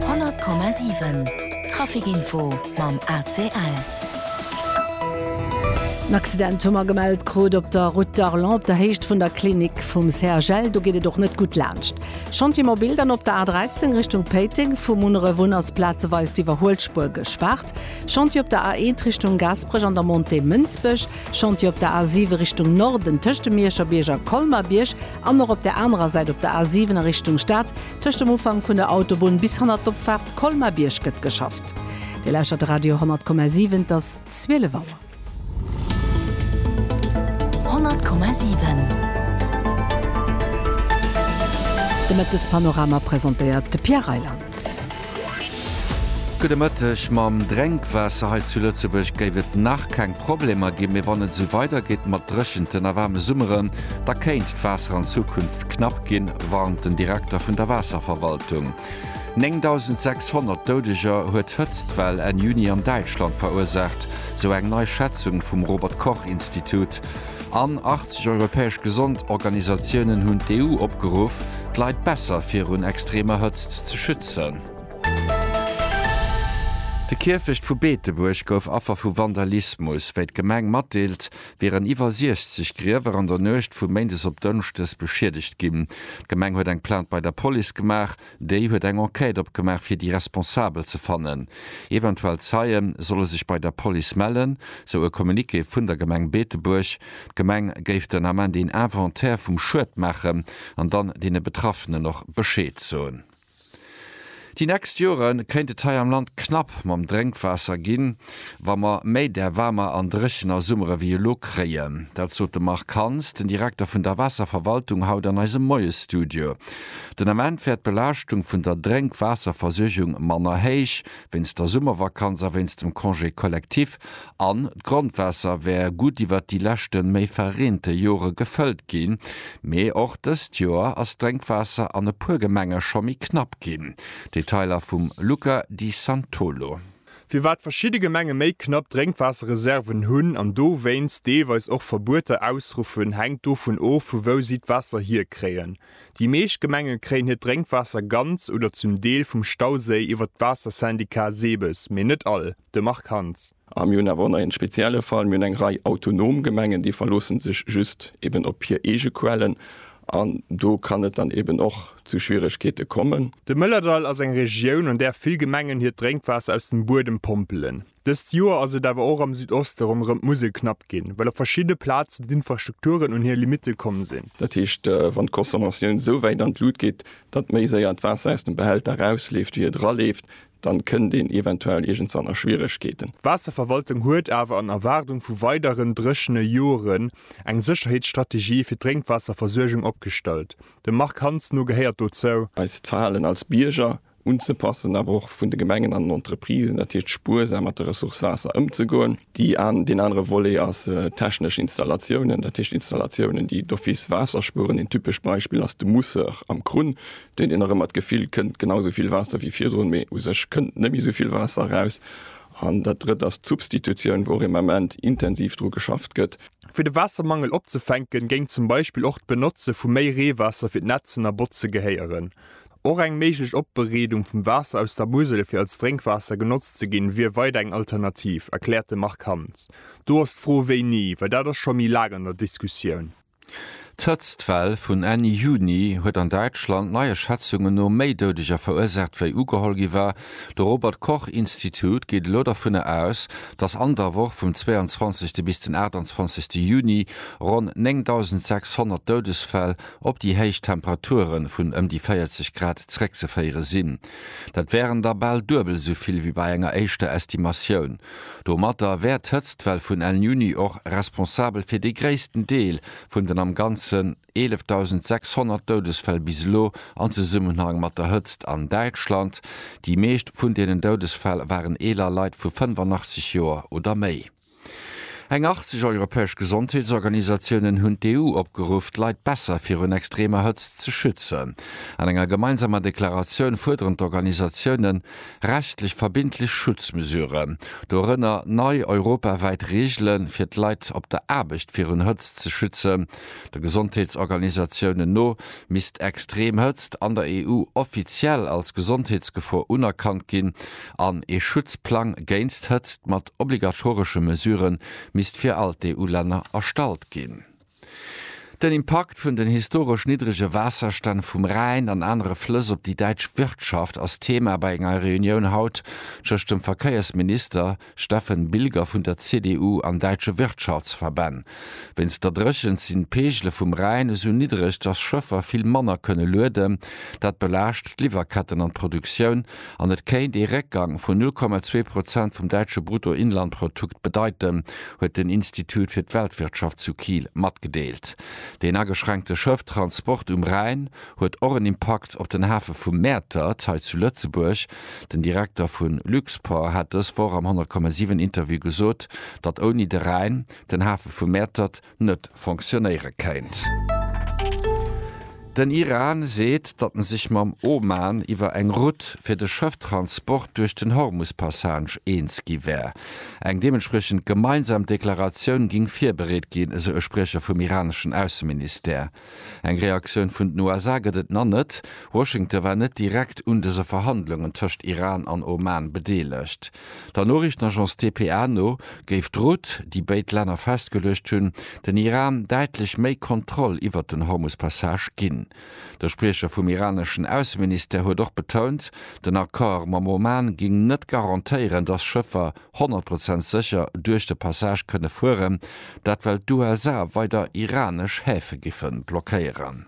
100,7 Traficinfo mam ACL. En Accident hu mer gemellt krut op der Route d'Arlon op der Héicht vun der Klinik vum CHL. Do geet et och net gutt laanscht Chantier Mobil. Dann op der A 13 Richtung Péiteng vu Munneref un ass plazeweis d'Iwwerhuelspuer gespaart. Chantier op der A 1 Richtung Gaasperech an der Montée Mënsbech. Chantier op der A 7 Richtung Norden tëscht dem Miescherbierg a Colmer-Bierg. An och op der anerer Säit, op der A 7 a Richtung Stad, tëscht dem Ufank vun der Autobunn bis hanner d'Opfaart Colmar-Bierg gëtt geschafft. Dir lauschtert de Radio 10,7, et ass 12 Auer. 10,7 De Mëttespanorama presentéiert de Pierre Reyland. Gudde Mëtteg. Mam Drénkwaasser hei zu Lëtzebuerg géif et nach keng Problemer ginn, mee wann et esou weidergeet mat dréchenten a waarme Summeren, da kéint d'Waasser an Zukunft knapp ginn, warnt den Direkter vun der Waasserverwaltung. 9.600 Doudeger huet d'Hëtztwell Enn Juni an Däitschland verursaacht, sou eng nei Schätzung vum Robert-Koch-Institut. an 80 europäesch Gesondorganisatiounen hunn d'EU opgeruff, d'Leit besser virun extremer Hëtzt ze schützen. De Kierfecht vu Beetebuerg gouf Affer vu Vandalismus. Wéi d'Gemeng matdeelt, wieren iwwer 60 Griewer an der Nuecht vu Méindes op Dënschdes beschiedegt ginn. D'Gemeng huet eng Plainte bei der Police gemaach. Déi huet eng Enquête opgemaach fir déi Responsabel ze fannen. Eventuell Zeie solle sech bei der Police mellen, sou e Communiqué vun der Gemeng Beetebuerg. D'Gemeng géif den Ament een Inventaire vum Schued maachen an dann deene Betraffenen och Bescheed soen. Déi nächst Jore kéint et hei am Land knapp mam Drénkwaasser ginn, wa mer méi där waarmer an dréchener Summere wéi elo kréien. Dat sot de Marc Hans, den Direkter vun der Waasserverwaltung, haut an eisem Moiesstudio. Den Ament wär d'Belaaschtung vun der Drénkwaasserversuergung manner héich, wéinst der Summervakanz a wéinst dem Congé collectif, an d'Grondwaasser wär gutt iwwert déi leschte méi verreente Jore gefëllt ginn. Mee och dëst Joer ass d'Drénkwaasser an e puer Gemenge scho méi knapp ginn. Detailer vum Luca Di Santolo. Firwat verschidde Gemenge méi knapp Drénkwaasserreserven hunn an dowéinst deelweis och Verbueter ausruffen, hänkt dovun of, vu wou si d'Waasser hierkréien. Déi meescht Gemenge kréien hiert Drénkwaasser ganz oder zum Deel vum Stauséi iwwer d'Waassersyndicat SEBES, mee net all. De Marc Hans. A mir hunn awer och nach ee spezielle Fall, Mir hunn eng Rei autonom Gemengen, déi verloossen sech just eben op hir eege Quellen an do kann et dann eben och zu Schwieregkeete kommen. De Mëllerdall ass eng Regioun, an där vill Gemengen hiert Drénkwaasser aus dem Buedem pompelen. Dëst Joer ass et awer och am Südoste ronderëm d'Musel knapp ginn, well op verschiddene Plazen d'Infrastrukturen un hir Limitte komm sinn. Dat heescht, wann d'Consommatioun esou wäit an d'Lut geet, datt méi séier d'Waasser aus dem Behälter erausleeft, wéi et eraleeft, da kënnt een eventuell iergendswann a Schwieregkeeten. D'Waasserverwaltung huet awer an Erwaardung vu weideren dréchene Joren eng Sécherheetsstrategie fir d'Drénkwaasserversuergung opgestallt. Dem Marc Hansen no gehéiert dozou. Eist Verhalen als Bierger unzepassen, awer och vun de Gemengen an den Entreprisen, dat heescht spuersam mat der Ressource Waasser ëmzegoen. Deen anere Volet ass technesch Installatiounen, dat heescht Installatiounen, déi d'office Waasser spueren. Een typescht Beispill ass de Mousseur am Krunn, deen een nach ëmmer d'Gefill kënnt, genau esou vill Waasser wéi virdrun, mee u sech kënnt net méi esou vill Waasser eraus. An dat Drëtt ass d'Substitutioun, wou och im Ament intensiv dru geschafft gëtt. Fir de Waassermangel opzefänken, géing zum Beispill och d'Benotze vu méi Reewaasser fir d'Netzen a Botze gehéieren. Och eng méiglech Opbereedung vum Waasser aus der Musel fir als Drénkwaasser genotzt ze ginn, wier weider eng Alternativ, erkläert de Marc Hans. Do ass d'Fro wéini, well dat ass scho méi laang an der Diskussioun. D'Hëtztwell vun Enn Juni huet an Däitschland neie Schätzungen no méi Doudeger verursaacht wéi ugeholl gi war. De Robert Koch Institut geet elo dervunner aus, datt an der Woch vum 22. bis den 28. Juni ronn 9.600 Doudesfäll op déi héich Temperature vun ëm déi 40 Grad zréckzeféiere sinn. Dat wären da bal duebel esou vill wéi bei enger éischter Estimatioun. Domatter wär d'Hëtztwell vun El Niño och responsabel fir dee gréissten Deel vun den am Ganzen 11.600 Doudesfäll bis elo an Zesummenhang mat der Hëtzt an Däitschland. Déi meescht vun deenen Doudesfäll waren eeler Leit vu 85 Joer oder méi. Eng 80 europäesch Gesondheetsorganisatiounen hunn d'EU opgeruff, d'Leit besser virun extremer Hëtzt ze schützen. An enger gemeinsamer Deklaratioun fuerderen d'Organisatioune rechtlech verbindlech Schutzmesuren, dorënner nei europawäit Reegele fir d'Leit op der Aarbecht virun Hëtzt ze schützen. De Gesondheetsorganisatiounen no misst extrem Hëtzt an der EU offiziell als Gesondheetsgefor unerkannt ginn an ee Schutzplang géinst Hëtzt mat obligatoresche Mesurë misst fir all d'EU-Länner erstallt ginn. Den Impakt vun den historesch niddrege Waasserstänn vum Rhäin an anere Flëss op déi däitsch Wirtschaft ass Thema bei enger Reunioun haut tëscht dem Verkéiersminister Steffen Bilger vun der CDU an däitsche Wirtschaftsverbänn. Wéinst der Dréchent sinn d'Peegele vum Rhäin esou niddreg, datt Schëffer vill manner kënne lueden. Dat belaascht d'Liwwerketten an d'Produktioun. an et kéint ee Réckgang vun 0,2 Prozent vum däitsche Bruttoinlandprotukt bedeiten, huet den Institut fir d'Weltwirtschaft zu Kiel matgedeelt. Deen ageschränkte Schëfftransport um Rhäin huet och en Impakt op den Hafe vu Mäertert hei zu Lëtzebuerg. Den Direkter vu Luxport hat dës Woch am 100,7 Interview gesot, datt ouni de Rhäin den Hafe vu Mäertert, net fonctionnéiere kéint. Den Iran seet, datt en sech mam Oman iwwer eng Rout fir de Schëfftransport duerch den Hormus-Passage eens gi wär. Eng deementspriechend gemeinsam Deklaratioun géing virbereet ginn, esou e Spriecher vum iraneschen Ausseministère. Eng Reaktioun vun den USA gëtt et nach net. Washington war net direkt un dëse Verhandlungen tëscht Iran an Oman bedeelegt. Der Noriichtenagence dpa no géif d'Route, déi béid Länner festgeluecht hunn, den Iran däitlech méi Kontroll iwwert den Hormus-Passage ginn. De Spriecher vum iraneschen Ausseministère huet och betount, den Accord mam Oman géing net garantéieren, dass Schëffer 100 Prozent sécher duerch de Passage kënne fueren, dat well d'USA weider iranesch Häfe giffe blockéieren.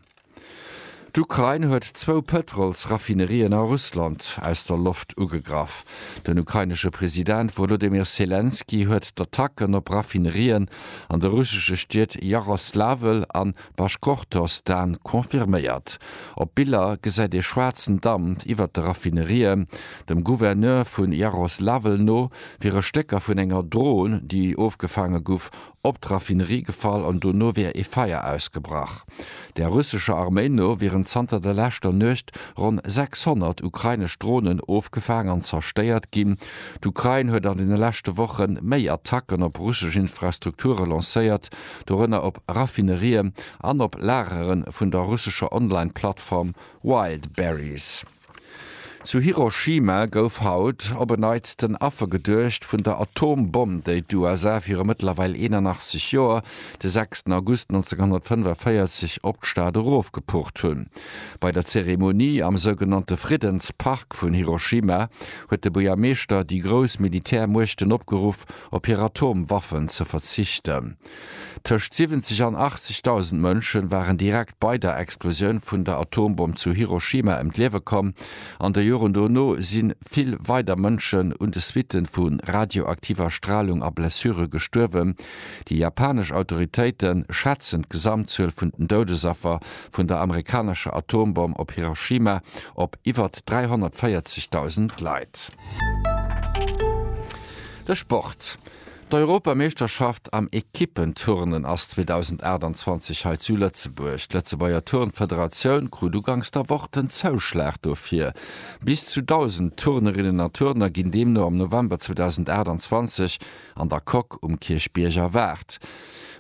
D'Ukrain huet zwou Pëtrolsraffinerien a Russland aus der Loft ugegraff. Den ukrainesche President Wolodymyr Selenskyj huet d'Attacken op Raffinerien an de russesche Stied Jaroslawl an. Baškortostan confirméiert. Op Biller gesäit ee schwaarzen Damp iwwert de Raffinerien. Dem Gouverneur vu Jaroslawl no wiere Stécker vun enger Dron, déi ofgefaange guff, op d'Raffinerie gefall an dono wier ee Feier ausgebrach. Der russescher Arméi no wieren zanter der leschter Nuecht ronn 600 ukrainesch Dronen ofgefaang an zerstéiert ginn. D'Ukrain huet an deene leschte Woche méi Attacken op russesch Infrastrukture lancéiert, dorënner op Raffinerien an op Lagere vun der russescher Online-Plattform Wildberries. Zu Hiroshima gouf haut op en Neits den Affer geduecht vun der Atombomm, déi d'USA viru mëttlerweil 81 Joer, de 6 August 1945, op d'Stad erofgepucht hunn. Bei der Zeremonie am sougenannte Friddenspark vun Hiroshima huet de Buergermeeschter déi grouss Militärmuechten opgeruff, op hir Atomwaffen ze verzichten. Tëscht 70 an 80.000 Mënsche waren direkt bei der Explosioun vun der Atombomm zu Hiroshima ëm d'Liewe komm. An de Joren dono si vill weider Mënschen un de Suitte vu radioaktiver Stralung a Blessure gestuerwen. Déi japanesch Autoritéite schätzen d'Gesamtzuel vun den Doudesaffer vun der amerikanescher Atombomm op Hiroshima op iwwer 340.000 Leit. De Sport, D'Europameeschterschaft am Equippenturnen ass 2028 hei zu Lëtzebuerg. D'Lëtzebuerger Turnfederatioun krut uganks der Woch den Zouschlag dofir. Bis zu 1.000 Turnerinnen a Turner ginn deemno am November 2028 an der Coque um Kierchbierg erwaart.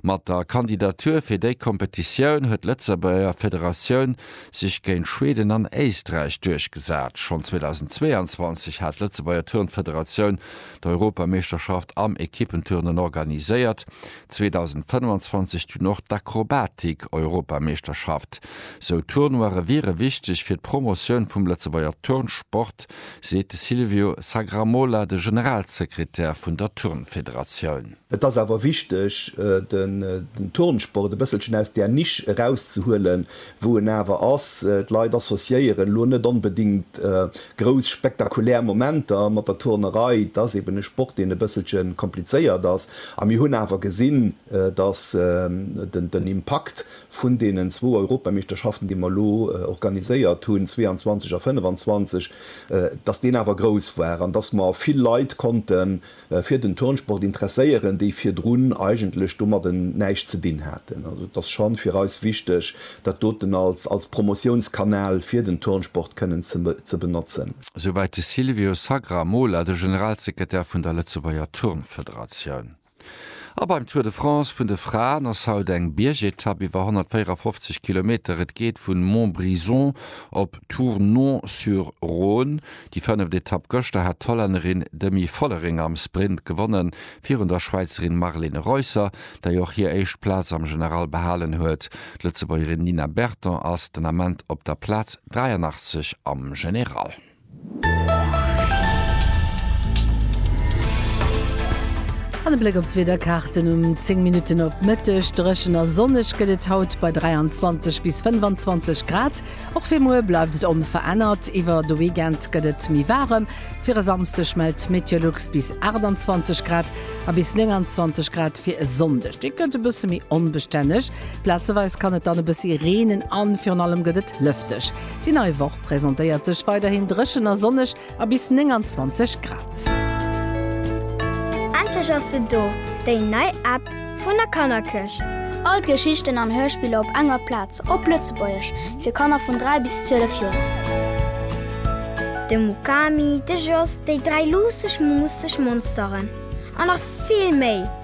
Mat der Kandidatur fir déi Kompetitioun huet d'Lëtzebuerger Federatioun sech géint Schweden an Éisträich duerchgesat. Schonn 2022 hat d'Lëtzebuerger Turnfederatioun d'Europameeschterschaft am Ekippenturnen organiséiert, 2025 dunn och d'Akrobatik-Europameeschterschaft. Sou Tournoië wiere wichteg fir d'Promotioun vum Lëtzebuerger Turnsport seet de Silvio Sagramola, de Generalsekretär vun der Turnfederatioun. Et ass awer wichteg, den Turnsport e bësselchen aus där Nisch erauszehuelen, wou en awer ass. D'Leit associéieren elo net onbedéngt grouss spektakulär Momenter mat der Turnerei. Et ass eben e Sport, deen e bësselche komplizéiert ass. A mir hunn awer gesinn, dass den Impakt Vun deenen zwou Europameeschterschaften, déi mer elo organiséiert hunn, 22 a 25, dass deen awer grouss war an dass mer vill Leit konnte fir den Turnsport interesséieren, déi virdrun eigentlech domadden näischt ze dinn haten. Also et ass scho fir eis wichteg, dat doten als Promotiounskanal fir den Turnsport kënnen ze benotzen. Souwäit de Silvio Sagramola, de Generalsekretär vun der Lëtzebuerger Turnfederatioun. A beim Tour de France vun de Fraen ass haut eng Biergetapp iwwer 154 Kilometer. Et geet vu Montbrison op Tournon-sur-Rhône. Déi fënneft Etapp gëschter hat d'Hollännerin Demi Vollering am Sprint gewonnen, virun der Schwäizerin Marlene Reusser, déi och hir éischt Plaz am General behalen huet. D'Lëtzebuergerin Nina Berton ass den Ament op der Plaz 83 am General. An e Bléck op d'Wiederkaarten um 10 Minutten op d'Mëtteg. Dréchen a sonneg gëtt et haut bei 23 bis 25 Grad. Och fir muer bleift et onverännert. Iwwer de Weekend gëtt et méi waarem. Fir e Samsdeg mellt Meteolux bis 28 Grad a bis 29 Grad fir e Sonndeg. Dee gëtt e bësse méi onbestänneg. Plazeweis kann et dann e bëssi reenen a virun allem gëtt et lëfteg. Déi nei Woch presentéiert sech weiderhin dréchen a sonneg a bis 29 Grad. Endlech ass se do, déi nei App vun der Kannerkëscht! All d'Geschichten an Hörspiller op enger Plaz, op Lëtzebuergesch, fir Kanner vun 3 bis 12 Joer. De Mukami, de Jos, déi dräi luusseg, muusseg Monsteren a nach vill méi!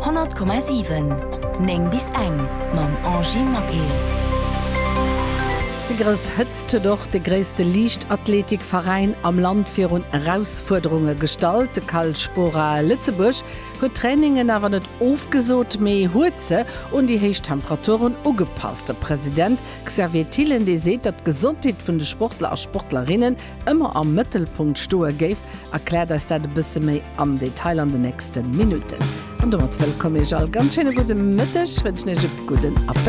100,7 9 bis eng mam Angie Maquet. Déi grouss Hëtzt huet och de gréisste Liichtathleetikveräin am Land virun Erausfuerderunge gestallt. De Cal Spora Lëtzebuerg huet d'Trainingen awer net ofgesot, mee huet se un déi héich Temperaturen ugepasst. De President Xavier Thill, LD, seet, datt d'Gesondheet vun de Sportler a Sportlerinne ëmmer am Mëttelpunkt stoe géif, erkläert eis dat e bësse méi am Detail an den nächste Minutten. An domat wëllkomm Iech all, ganz schéine gudde Mëtteg, wënschen Iech e gudden Appétit.